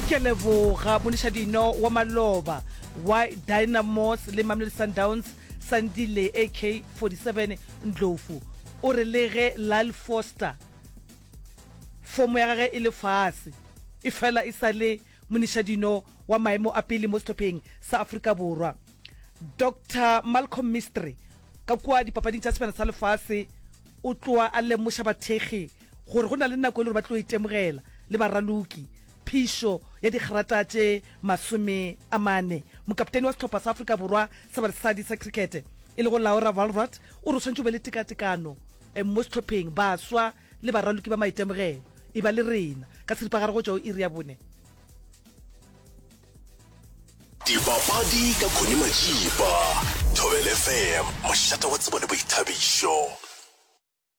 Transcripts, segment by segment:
Ke a leboga monišadino wa maloba wa Dynamos le Mamelodi Sundowns, Sandile AK-47 Ndlovu, o re le ge Lyle Foster fomo ya gagwe e le fase, efela e sa le monišadino wa maemo a pele mo sehlopheng sa Afrika Borwa. Doctor Malcolm Mistry ka kua Dipapading tša Sebjana sa Lefase o tloa a lemoša bathekgi gore go na le nako e le gore ba tlo itemogela le baraloki phišo ya digrata tše masome a mane mokaptene wa setlhopha sa afrika borwa sa basadi sa crickete e lego laura valrat o re o tshwanetse o be le tekatekano eh, mo setlhopheng baswa le baraloki ba maitemogelo e ba le rena ka seripagare go tšwa o iri ya bone dipapadi ka khone majipa thobelefm mošata wa tsebo le boithabišo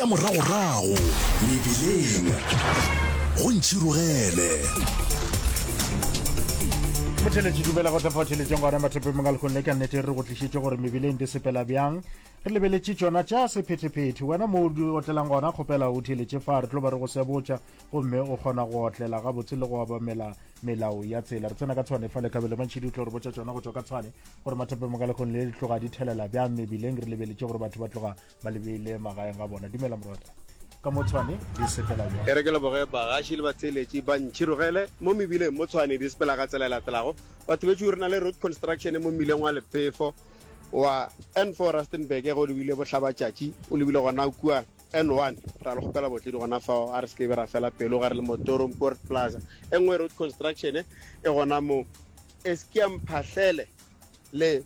Tša moragorago mebileng go ntšhirogele. botheletši dumela go tlefa theletšong gona mathopemong a lekgone ka nnete re go tlišitše gore mebileng di sepela bjang re lebeletše tšona tša sephetephete wena mo o di otlelang gona kgopela o theletše fa re tlo ba re go sebotša gomme o kgona go otlela gabotse le go obamela melao ya tsela re tsena ka tshwane fa lekabelo mantšhi di tlo re botša tšona go tswa ka tshwane gore mathopemong a lekgone le di tloga di thelela bjang mebileng re lebeletše gore batho ba tloga ba lebile magaeng ga bona dumela morwadi ka mo tshwane di sepela bjang e re ke leboge bagaši le batheeletši ba ntšhirogele mo mebileng mo tshwane di sepela ka tsela e latelago batho betšo re na le road construction mo mmileng wa lefefo wa n4 rustenburg ge o lebile bohlabatšatši o lebile gona kua n1 ra le kgopela botledi gona fao a re se kebe ra fela pelo ga re le motorong port plaza e nngwe road construction e gona mo eskia mphahlele le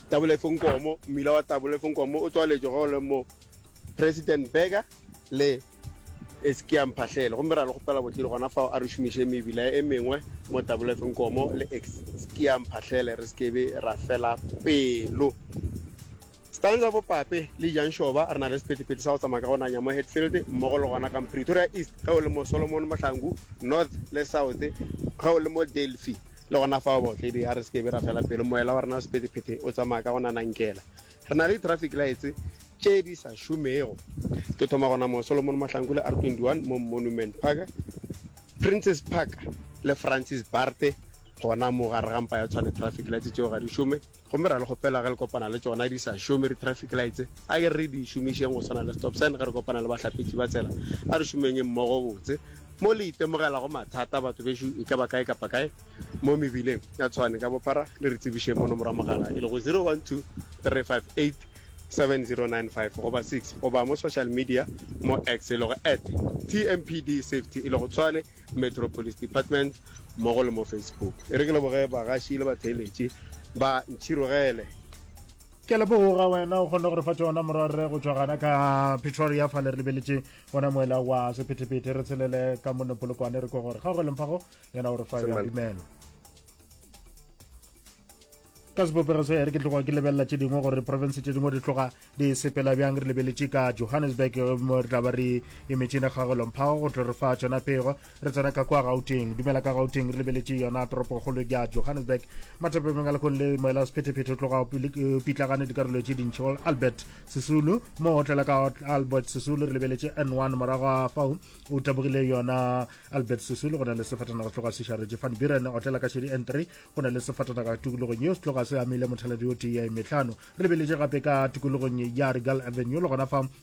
tabolefonkomo mmila wa tabolefonkomo o tswaletšwe go le mo president berger le eskia mphahlele gomme ra le kgopela botlile gona fao a re šomiše mebila e mengwe mo tabolefonkomo le eskia mphahlele re sekebe ra fela pelo stanza bopape le jang shoba re na le sephethephethe sa go tsamaya ka go nanya mo hetfield mmogo le gona ka pretoria east ge o le mo solomon mohlangu north le south ge o le mo delphi Le gona fao, baotledi, a re se ke be ra fela pelo. Moela wa rena wa sephethephethe o tsamaya ka go nanankela. Re na le di-traffic lights tše di sa šomego. Ke thoma gona moo, Solomon Mahlangu le R21 mo Monument Park, Princes Park le Francis Baard gona mo gare ga mpa ya Tshwane. Traffic lights tšeo ga di šome. Gomme ra le kgopela ge le kopana le tšona di sa šome, di-traffic lights, a ke re re di šomišeng go swana le stop sign ge re kopana le bahlapetši ba tsela. A re šomenyeng mmogo botse. Mo le itemogelago mathata, batho bešo, e ka ba kae kapa kae mo mebileng ya Tshwane ka Bophara, le re tsebišeng mo nomoro ya mogala e lego 0123587095 goba 6, goba mo social media mo X e lego at TMPD Safety e lego Tshwane. Metro Police Department mmogo le mo Facebook. E re ke leboge bagaši le batheeletši ba Ntšhirogele. Ke a leboga wena o kgonne go re fa tšona morwarre go tšwa gana ka Pretoria fale re lebeletše gona moela wa sephethephethe re tshelele ka mone polokwane re kwa gore kgaogeleng fago yena o re fa ya dumelo ka sebopego se re ke tloga ke lebelela tše dingwe gore province tše dingwe di tloga di sepela bjang re lebeletše ka johannesburg mo re tla ba re emetšene ga golomphago go tlo re fa tsona pego re tsena ka kwa gauteng dumela ka gauteng re lebeletše yona toropokgolo ya johannesburg mathape mengalakong le moela sephetephete o tloga eh, pitlagane dikarolo tše dintšhi go albert sesulu mo o tlela ka albert sesulu re lebeletše n one morago a fao o tabogile yona albert sesulu go na le sefatana go tloga sešaretše fan biren o tlela ka šedi n three go na le sefatanaga tokologong yeo se tloga se amile mothaladi o tee ya emetlhano re lebeletše gape ka tokologong ya regal avenue le gona fa